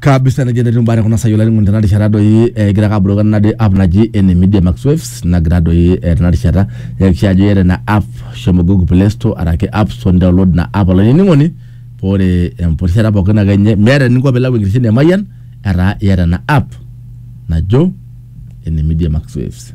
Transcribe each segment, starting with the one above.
kabisa nejo netii mbaa tekuna saai olainining'oni tena rishata doi egira ake aboloki ena de- app naji ene media max waves nagira doi eh, tena rishata yakikisha ajo iyata ina app shomo google play store araki app store download ina app olainining'oni paa ore empurishata pookin ake nye meeta eninko piilau enkitesheni e mayian etaa iyata ina app najo ene media max waves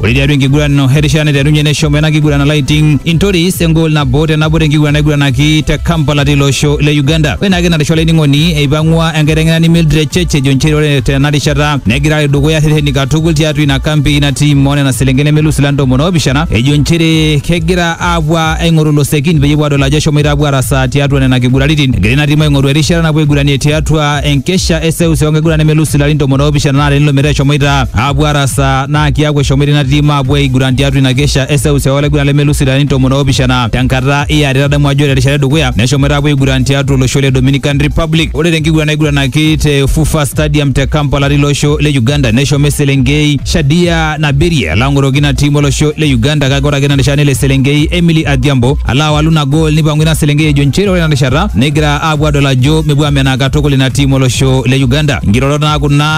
Ore tiatua enkiguran ino erishata naiterunye neshomo ena kiguran alaiting intoris engol nabo te nabo tenkiguran naiguranaki te Kampala tilo osho le Uganda. Ore naake ina risha olainining'oni eipang'ua enkiteng'enani Mildred Church ejo nchere ore tena rishata negira alo dukuya irreteni katukul tiatua ina kampi ina tim oo nena selenken nemelus ila ntomoni oopishana ejo nchere kegira aapuo aing'oru ilosekin peyie epuo aadol ajo eshomoita aapuo arasaa tiatua nena kiguraritin. Egira ina tim aing'oru erishata napuo aiguranie tiatua enkesha e seuseu enkiguran nemelus ilarin tomon oopishana naa tenilo metaa eshomoita aapuo arasaa naa kiaku eshomoita ina tim aapuo aiguran tiatua ina kesha e seuseu olaiguran lemelus ilarin tomon oopishana tenkata e are. Tadamu ajo ore terishata edukuya neshomoita aapuo aiguran tiatua olosho le Dominican Republic. Ore tenkiguran naiguranaki te FUFA Stadium te Kampala tilo osho le Uganda neshomo eselenkei Shadia Nabirie alo ang'oroki ina tim olosho le Uganda kake ore ake ina rishata nelo eselenkei Emily Adhiambo alo awalu ina gool nipang'u ina selenkei ejo nchere ore ina rishata negira aapuo aadol ajo mepuo amenaa katukul ina tim olosho le Uganda. Nkirorot naa kuna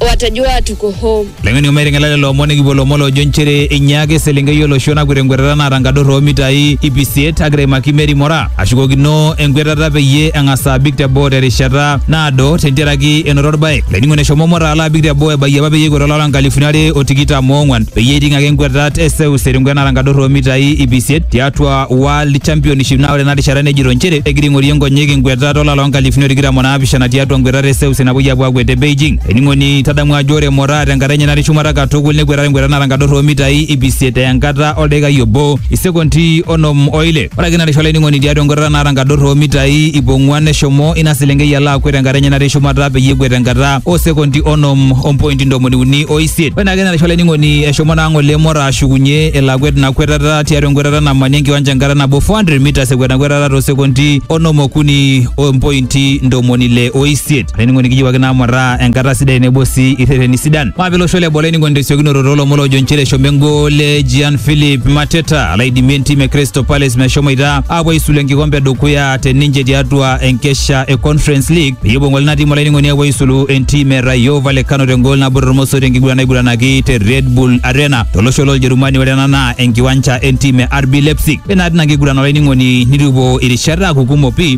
watajua tuko home. Leng'eni ometing'ela lelo omon nikipuo lomon loojo nchere einyaaka eselenkei olosho nakwet enkwetata naata nkador oomitai ip isiet agira aimaki Mary Mora ashukokino enkwetata peyie eng'as abik teboo terishata naado tentiaraki enoto orbae. Laining'oni eshomo Mora alo abik teboo ebayie apa peyie ekwet olapa nkalifuni are o tikitam oong'wan peyie eiting ake nkwetat e seuseu tenkwet naata nkador oomitai ip isiet tiatua World Championship naa ore ena rishata nejito nchere egira aing'orie nkonyek nkwetat olapa loonkalifuni o tikitam o naapishana tiatua nkwetata e seuseu napuoi apuo akwet te Beijing. Ening'oni tadamu ajo ore Moraa tenkata enye natii shumata katukul nekwetata enkwetata nara nkador oo mitai ip isiet enkata oldaikai obo isekondi onom o ile. Ore ake narisho olainining'oni tiatua enkwetata nara nkador oo mitai ip ong'uan neshomo ina selenkei alo akwet tenkata enye natii shumata peyie ekwet tenkata oo sekondi onom o mpointi ntomoni uni o isiet. Ore naake narisho olainining'oni eshomo naa ng'ole Moraa ashukunye elo akwet ina kwetata tiatua enkwetata namani enkiwanja enkata nabo 400 mitas ekwet ina kwetata too sekondi onom okuni o mpointi nkaunti ntomoni ile o isiet olainining'oni kiyiewuaki naamurraa enkata sidai nebo sii irreteni sidan maape losho le boo olainining'oni tesiokinoto toolomon loojo nchere eshomo engol e Gian Philip Mateta alo aidimie entim e Crystal Palace meshomoita aapuo aisulu enkikompe edukuya te ninche tiatua enkesha e Conference League peyie epuo ng'ole ina tim olainining'oni apuo aisulu entim e Rayo Vallecano tengol nabo tormoso tenkiguran naiguranaki te Red Bull Arena tolosho loljerumani ore ena naa enkiwanja entim e RB Leipzig ore naa tina kiguran olainining'oni nitu epuo irishat aaku kumok pii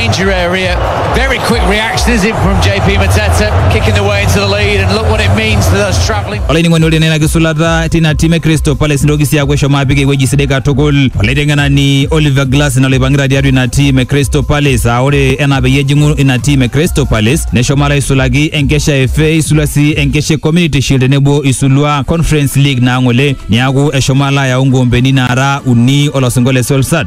Danger area. Very quick reaction is it from JP Mateta kicking the way into the lead and look what it means to those travelling. olainining'oni ore nena kisulata tina tim e crystal palace nitoki sii aaku eshomo apik ewueji sidai katukul olaiteng'enani oliver glass ina loipang'ita tiatua ina tim e crystal palace aa ore enaa peyie ejing'u ina tim e crystal palace neshomo alo aisulaki enkesha e fa isulua sii enkesha e community shield tenebo isulua conference league naa ng'ole niaku eshomo alo ayau nkoombeni naara uni olosingo le solsat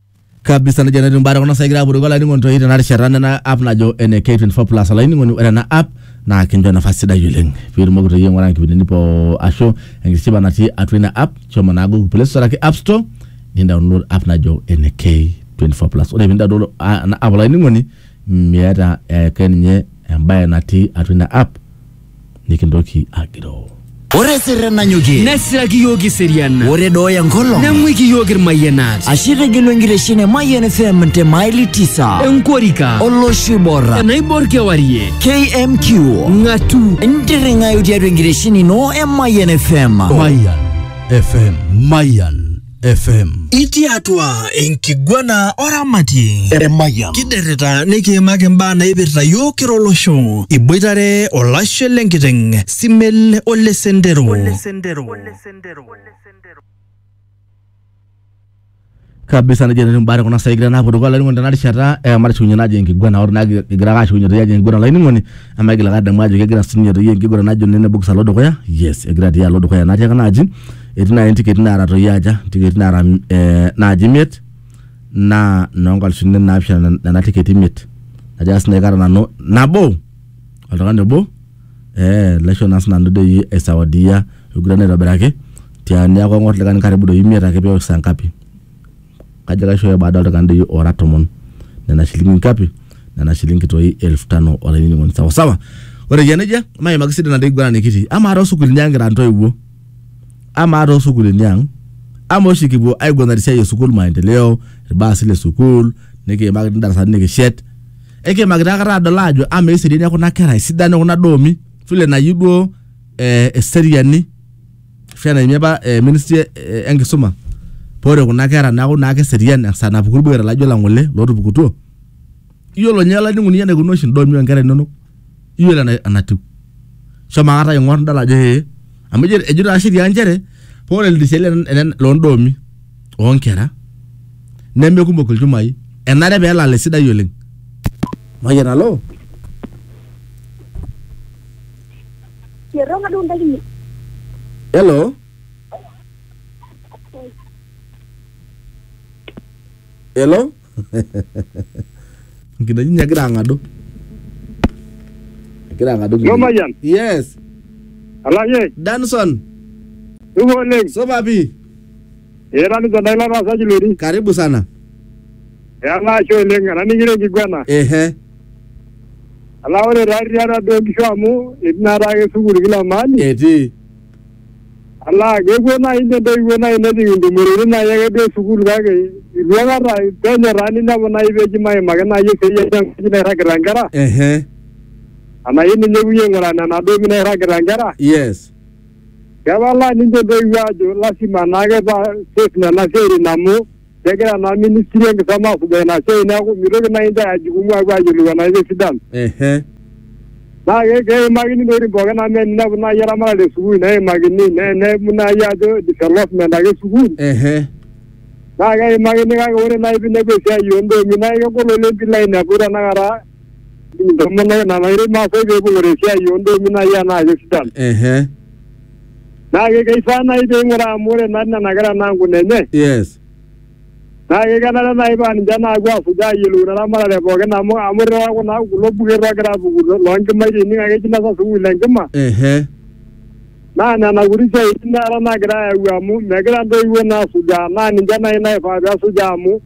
kabisa nejia netiu imbaa tekuna saai kigira apuo dukuya olainining'oni toi tena rishata nena app najo ene K24 plus olainining'oni ore ena app naa kincho nafasi sidai oleng piitumoki toi aing'ura inkipindini poo ashu enkishipa natii atua ina app shomo naa google play store araki app store ni download app najo ene K24 plus ore pindaol ena app olainining'oni miata ake ninye embaye natii atua ina app nikintoki agiroo. Ore sirre nanyokie. Nesiraki iyiook iseriana. Ore dooyo enkolong. Neng'uiki iyiook irmayianat. Ashe itegelu enkiteshen e Mayian FM te maili tisa. Enkorika. Olosho oibor. Enaibor kewarie. KMQ. Ng'atu. Intirring'ayu tiatua enkiteshen ino e Mayian FM. Mayan FM Mayan FM. Itii atua enkiguana oramatie. Eremayian. Kiderita nikiimaki mbaa naipirta yiok kira olosho. Iboitare olashe lenkiteng, Simel ole Sendero. kabisa nejia nanu mbaa kuna saai kigira naapuo dukuya olainining'oni tena rishata eh, matushukunye naajo enkiguana ore naa kigira ake ashukunye toi ajo enkiguana olainining'oni amu aigil ake adamu ajo kegira sininye toi enkiguana najo nene bokis alo dukuya yes egira tii alo dukuya natii ake naaji etii naaji ntiketi naara toi aja ntiketi naara mm, eh, naaji imiet naa noonkalifuni naapishana nena tiketi imiet ajo naa sinanu kata nanu nabo oltung'ani obo eh, laisho naa sinanu doi aisawadia aiguran aitobiraki tia niaku ang'or likae karibu doi imiet ake peok saa ngapi kajo kaishooyo baada oltung'ani doi ora tomon nena shilingi ngapi nena shilingi toi elfu tano olainining'oni sawasawa ore eyia nejia maimaki sidana doi kiguranakiti amaa toosukuulini ang kira ntoiwuo amaa too sukuulini ang ama oshi kipuo aiguanare esiai e sukuul maendeleo irbaasi le sukuul nikiimaki ti darasani nikishet ekiimaki taa kata adol aajo amaa eseriani e kuna kera esidano e kuna doomi vile nayieu duo eh, eseriani ashu enaimie apa eh, ministry e- e- enkisuma pore kuna kera neeku naa keserian esaa napuku irbuketa laijo lang ng'ole lootupukutuo Iyiolo ninye olainining'oni lai eneikununo oshi intomia o nkera inono, iyiolo enatiu. Shomo aikata aing'or nidol ajo ee. Amu ejo taa sheria nchere ore ildirishani loo ndoomi oo nkera neme kumok ilchumai, enare pee elala esidai oleng. Mayian alo. Hello? Hello? nkinejik ninye egira ang'adu egira ang'adu Yo nkinejik. Mayian, yes alashe, danson tuko oleng. supa pii Eeta ninche ndai lataasaki lori. karibu sana Eala ashe oleng, ananing'ire enkiguana. ehe Ala ore taa rriata duo nkishu amu etii naa taake sukuul kila mahali. etii Alaa kepuo naaji ninye intoiwuo naaji nejing intumoritin naaji ake duo esukuul kake itu aikata penyo taa ninepu naaji peji maimaki naaji esiai enye enkaji nairragita inkera ehe anai ninye epuoi aing'uraa nena doomi nairragita inkera yes kepalaa ninche intoiwuo aajo lasima naake paa safe nena siaitin amu kegira naa ministry enkisoma asujaa ina siai neeku mitoki naaji intae ajukumu apuo ayiolou enaa kesidanu Ehe. naa ke- keimakini intokitin pookin amu eninepu naaji eramatare esukuul neimakini ne- neimu naaji ajo development ake esukuul Ehe. naa keimakini kake ore naaji piinepu esiai oondoomi naa kegol oleng piilo ainepu tenakata Ntomono nena nairem maasai pee eibung'ore esiai oo ndoomi naaji anaa kesidan. ehe Naa ke- keifaa naaji pee ing'uraa amu ore naa nena kera naa nkuna enye yes naa ke- kenare naaji paa ninche naapuo aasuj aayiolou ina ramatare pookin amu amu irriwaa kuna kulo buket oogira aapuku lo- loonkimaitie ining ake eji inasa sukuul enkima ehe naa nena kuti siaitin taata naagira aayau amu megira intoiwuo naa asujaa naa ninche naaji naifaa pee esujaa amu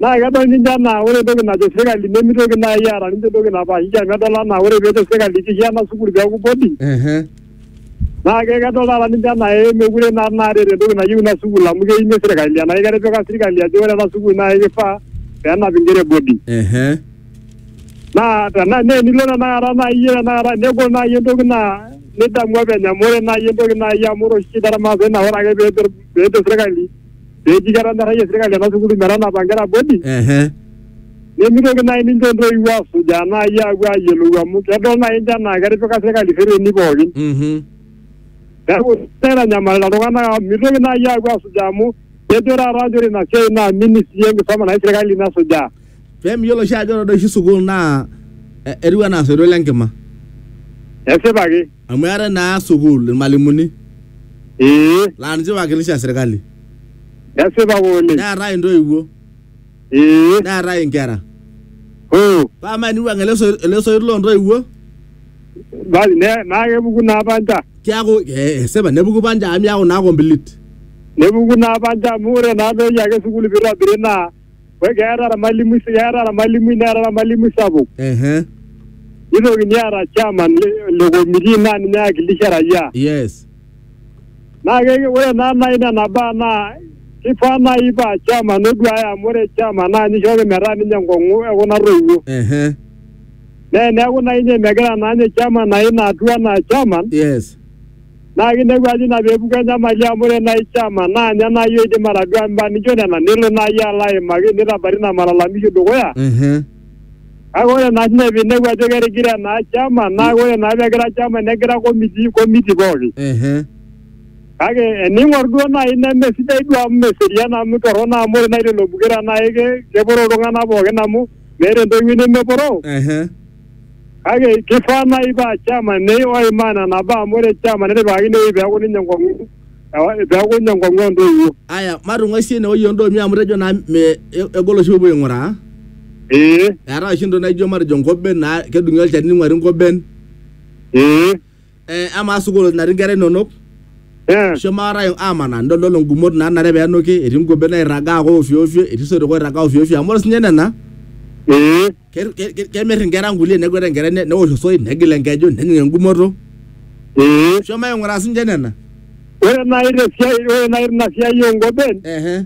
Naa kedol ninche anaa ore entoki najo sirkali nemeitoki naai eeta ninche entoki napaashiki amu edol anaa ore peejo sirkali kiya ena sukuul peeku boarding Ehe. naa ke- kedol taata ninche anaa ee mekure naa naata eeta entoki nayieu ina sukuul amu keimie sirkali enake ketipika sirkali ajo ore ena sukuul naa kifaa peenap inkera e boarding Ehe. naa tena naa enilo tenakata naai iyie tenakata negol naai entoki naa nidamu openy amu ore naai entoki naai amu ore oshi shida ormaasai naa ore ake peejo peejo sirkali pee eji ketonyorrayie sirkali ena sukuul metanapa nkera bodi ehe nemitoki naaji ninche intoiwuo asujaa naaji aapuo aayiolou amu kedol naaji ninche anaa ketipika sirkali rreteni pookin mhm neeku naitanyamalita iltung'anak amu mitoki naaji aapuo asujaa amu kejo taata njere ina siai naa ministry enkisoma naji sirkali nasujaa pee miyiolo oshi ajo ore doi oshi sukuul naa eh, etiu anaa soito lenkima esipa ake amu eetae naa sukuul ilmalimuni ee laa ninche iwakilisha sirkali esipa ake oleng neetae intoiwuo ee neetae inkera hoo paa amaa eniwuang ele soi- ele soit loo ntoiwuo basi ne- naa kepuku naa panja keaku eh, esipa nepuku panja amu iyaku naa complete nepuku naa panja amu ore naa peeji ake sukuul piitobiri naa Ore keeta ormalimui keeta ormalimui neeta ormalimui sapuk. Ehe. Nitokini aata chairman le- le committee naa ninye oiwakilisha raia. Yes. Naa ke- ore naa nai nena baa naa kifaa nai paa chairman oduaya amu ore chairman naa ninye ishooki metaa ninye enkong'u ekuna toiwuo. Ehe. Naa eneeku naa inye megira naa ninye chairman aim atua enaa chairman, Yes. Naa kinepu ajo ina pee epuku enyamali amu ore naaji chama naa ninye naaji oidim atadua mbaa nijo nena nelo naaji alo aimaki neitabari ina malalamishi dukuya. Mhm. Kake ore naa sii ninye pee inepu ajo ketigire naa chama naa ore naa pee egira chama negira committee committee pooki. Mhm. Kake ening'or duo naaji neme sidai duo amu meserian amu torrono amu ore naaji lelo buketa naa ke keporo iltung'anak pookin amu meeta entoiwuoi nemeporoo. Mhm. kake kifaa naaji paa chairman nei oimaa nena baa amu ore chairman netipikakine ewueji peeku ninye enkong'u ewa- peeku ninye enkong'u entoiwuo aya matung'uai sie ine wueji ondoomi amu tejo naa me e- egol oshi pepuo aing'uraa ee eetae oshi entoki naijo matejo nkoben naa kedung'i olchani ning'uari nkoben ee Eh, amaa sukuul natii nkera inonok Eh, shomo akata amanaa nidol ngumot naanare pee enuki etii ngobet nairragaa ake ofyoofyo etii soitok oirragaa ofyoofyo amu ore sinye nena eh, ke- ke- ke- kemir inkera nkulie nekwet enkerai ne- newosh osoit negil enkeju nejing engumoto eh. shomo aing'uraa sinche nena Ore naaji te siai ore naaji tina siai oo nkoben ehe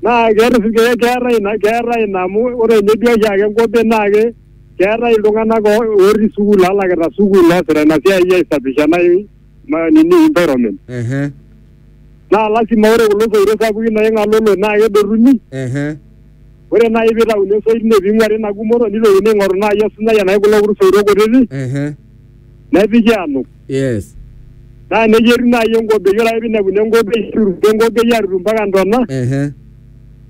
naa keeta keetae ina keetae ina amu ore ninye duo oshiake nkoben naa ke keetae iltung'anak o- otii sukuul alakita sukuul oosita ina siai aisafisha ena i- ma- nini environment ehe naa lasima ore kulo soito sapukin naing'alolo naa kedotuni ehe ore naaji piitauni osoit ine piing'uari ina gumoto nitokini aing'oru naaji osunyai enake kulo kuti soito kutiti ehe nepiki anuk yes naa nejia etiu naaji enkobei ore ake pinepuni enkobei nituruki enkobei atutu mpaka ntona ehe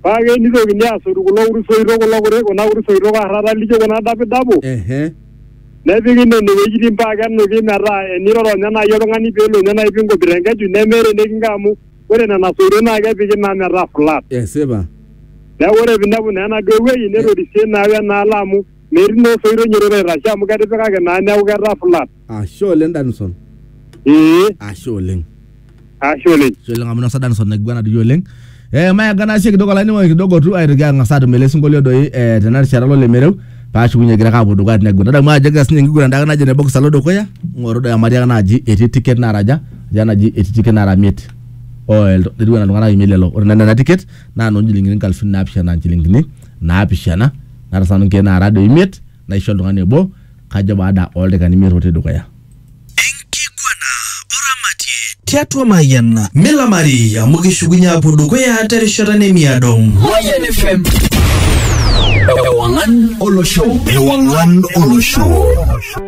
paa ake nitokini asotu kulo kuti soitok kulo kuti kuna kuti soitok arrata lijo kuna dapidapo ehe nepiki nene wuejitin paa kenuki metaa eniroro ninye naaji oltung'ani peelo ninye naaji pinkobit enkeju nemeeta enikinko amu ore nena soitok naa kepiki naa metaa flat esipa neeku ore pinepu naa enaduo wueji netorisie naa wenaalo amu metii naa osoito nyororo aitashe amu ketipikaki naa neeku ketaa flat ashe oleng danison ee ashe oleng ashe oleng ashe oleng amu inosa danison naiguana doi oleng eh, mayaga naa sie kidogo olainining'oni kidogo tu aitoki ang'as atum ele sinkolio doi eh, tena rishata lolemereu paashukunye egira ake apuo dukuya tinegwen adamu ajo egira sinye enkiguran dake najo ne box alo dukuya ng'oru doi amu atii ake naaji etii ticket naaraja atii enaji etii ticket naara miet oh, el- etiu enaa iltung'anak imiet lelo ore naa nena ticket naa noo nchilingini nkalifuni naapishana nchilingini naapishana naata sanu nkeek naara doi imiet naisho oltung'ani obo kajo baada oldakikani imiet otii dukuya. Enkiguana oramatie tiatua Mayian. Milamari amu kishukunye aapuo dukuya terishata nemiado. Mayian FM. Ewang'an olosho. Ewang'an olosho.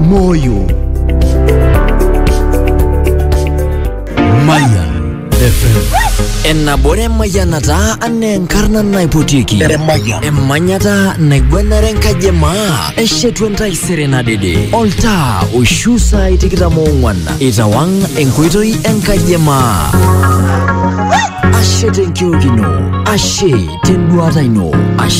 moyo Mayan FM. Enabore mayanata ane enkarna naipotiki. Emanyata naigwenare enkaji e maa. Eshetu entaisere nadede. Oltaa oishu saai tikitam oong'wan. Itawang' enkoitoi enkaji e maa. Ashe tenkiok ino. Ashe tenduata ino. Ashe